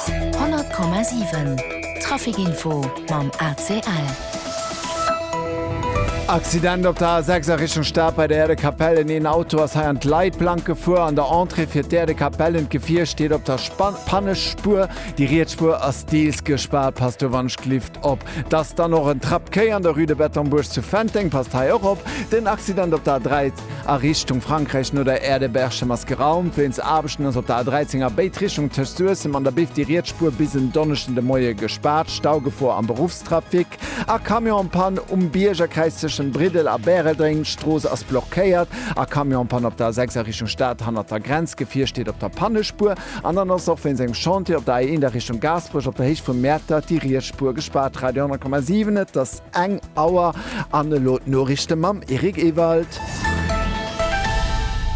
100,7 Traficinfo mam ACL. Accident op der A 6 a Richtung Stad bei der Aire de Capellen. Een Auto ass hei an d'Leitplank gefuer. An der Entrée fir d'Aire de Capellen. D'Gefier steet op der Spa Pannespuer. Déi riets Spuer ass deels gespaart. Passt do wannscht Lift op. T'ass dann och en Trapp Quai an der Rue de Bettembourg zu Fenteng. Passt hei och op. Den Accident op der A 13. A Richtung Frankräich no der Aire de Berchem ass geraumt. Wéinst Aarbechten ass op der A13 a béid Richtung tëscht Suessem an der Biff déi riets Spuer bis en Donneschden de Moie gespaart. Staugefor am Beruffstrafic a Camion am Pann um Biergerkräiz tëschent Briddel a Bäreldréng. D'Strooss ass blockéiert. A Camion am Pann op der A6 a Richtung Stad hannert der Grenz. Gefier steet op der Pannespuer. An dann ass och wéinst engem Chantier op der A1 a Richtung Gaasperech op der Héicht vum Mäertert déi riets Spuer gespaart. Radio 100,7 Et ass. Eng Auer an elo d'Noriichte mam Eric Ewald.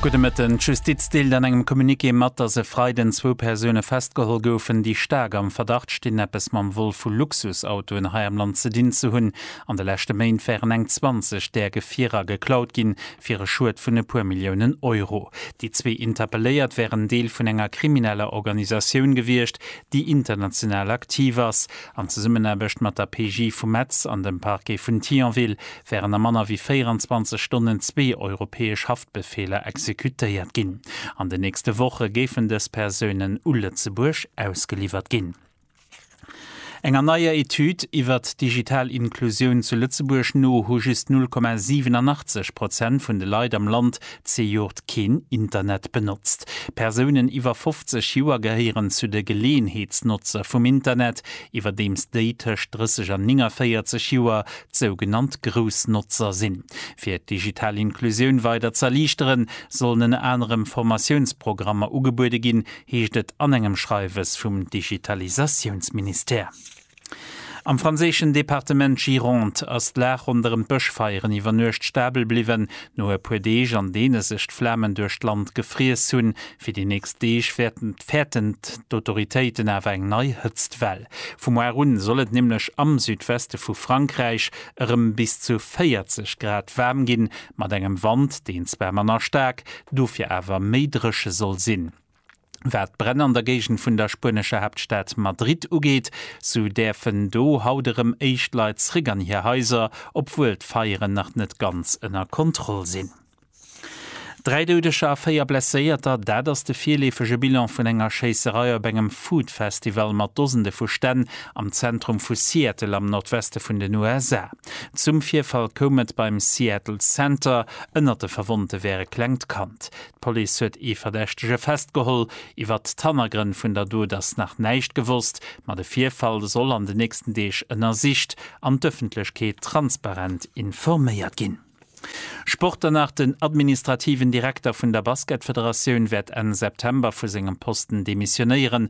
Gudde Mëtten. D'Justiz deelt an engem Communiqué mat, datt e Freiden zwou Persoune festgeholl goufen, déi staark am Verdacht stinn, eppes mam Vol vu Luxusautoen hei am Land ze dinn ze hunn. An de leschte Méint wären eng 20 där Gefierer geklaut ginn, fir e Schued vun e puer Milliounen Euro. Déi zwee Interpelléiert wären Deel vun enger krimineller Organisatioun gewiescht, déi international aktiv ass. An Zesummenaarbecht mat der PJ vu Metz an dem Parquet vun Thionville wären a manner wéi 24 Stonnen zwee europäesch Haftbefeeler exekutéiert ginn. An den nächste Woche géifen dës Persounen u Lëtzebuerg ausgeliwwert ginn. Enger neier Etüd iwwer d'digital Inklusioun zu Lëtzebuerg no hu just 0,87 Prozent vun de Leit am Land Zejoert keen Internet benotzt. Persounen iwwer 50 Joer gehéieren zu de Geleeënheetsnotzer vum Internet, iwwerdeems déi tëscht 30 an 49 Joer d'sougenannt Groussnotzer sinn. Fir d'digital Inklusioun weider z'erliichteren, sollen ënner anerem Formatiounsprogrammer ugebuede ginn, heescht et an engem Schreiwes vum Digitalisatiounsministère. Am franséischen Departement Gironde ass d'Lag ronderëm d'Bëschfeieren iwwer Nuecht stabel bliwwen. No e puer Deeg, an deene sech d'Flamen duerch d'Land gefriess hunn, fir déi nächst Deeg fäerten d'Autoritéiten awer eng nei Hëtztwell. Vu muar un soll et nämlech am Südweste vu Frankräich erëm bis zu 40 Grad waarm ginn, mat engem Wand, deen zwar manner staark, dofir awer méi dréche soll sinn. Wat d'Bränn an der Géigend vun der spuenescher Haaptstad Madrid ugeet, sou däerfen do haut erëm éischt Leit zréck an hir Haiser, obwuel d'Feieren nach net ganz ënner Kontroll sinn. Dräi Doudeger a véier Blesséierter, dat ass de virleefege Bilan vun enger Schéisserei op engem Food Festival mat Dosende vu Stänn am Zentrum vu Seattle am Nordweste vun den USA. Zum Virfall koum et beim Seattle Center. Ënnert de Verwonnte wär e klengt Kand. D'Police huet ee Verdächtege festgeholl. Iwwer d'Hannergrënn vun der Dot ass nach näischt gewosst, ma de Virfall soll an de nächsten Deeg ënnersicht an d'Ëffentlechkeet transparent informéiert ginn. Sport dann nach, Den administrativen Direkter vun der Basketfederatioun wäert Enn September vu sengem Posten demissionéieren.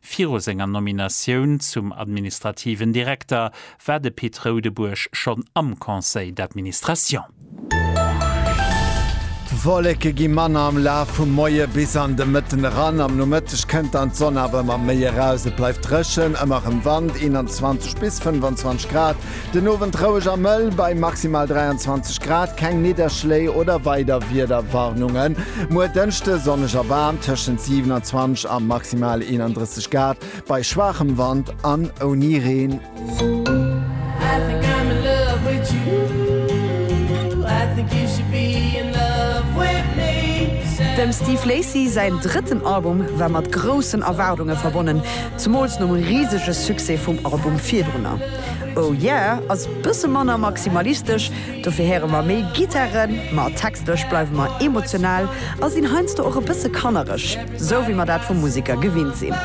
Viru senger Nominatioun zum administrativen Direkter war de Pit Roudebuerg schonn am Conseil d'administration. D'Wolleke gi manner am Laf vum Moie bis an de Mëtten eran. Am Nomëtteg kënnt dann d'Sonn awer ëmmer méi eraus. Et bleift dréchen, ëmmer erëm Wand, 21 bis 25 Grad. Den Owend roueg a mëll bei maximal 23 Grad, keng Nidderschléi oder weider Wiederwarnungen. Muer Dënschde sonneg a waarm, tëschent 27 a maximal 31 Grad bei schwaachem Wand an ouni Reen. Dem Steve Lacy säin drëtten Album war mat groussen Erwaardunge verbonnen. Zemools nom risege Succès vum Album virdrunner. Oh Yeah ass bësse manner maximalistesch, dofir héiere mer méi Gittaren, ma textlech bleiwe mer emotional a sinn heiansdo och e bësse kannereg, sou wéi mer dat vu Museker gewinnt sinn.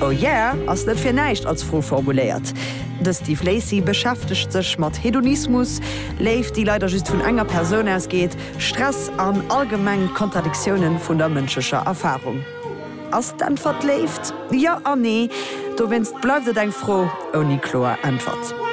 Oh Yeah ass net fir näischt als Fro formuléiert. De Steve Lacy beschäftegt sech mat Hedonismus, Léift, déi leider just vun enger Persoun ausgeet, Stress an allgemeng d'Kontradiktiounen vun der mënschlecher Erfarung. Ass d'Äntwert Léift? Jo an Nee. Dowéinst bleift et eng Fro ouni kloer Äntwert.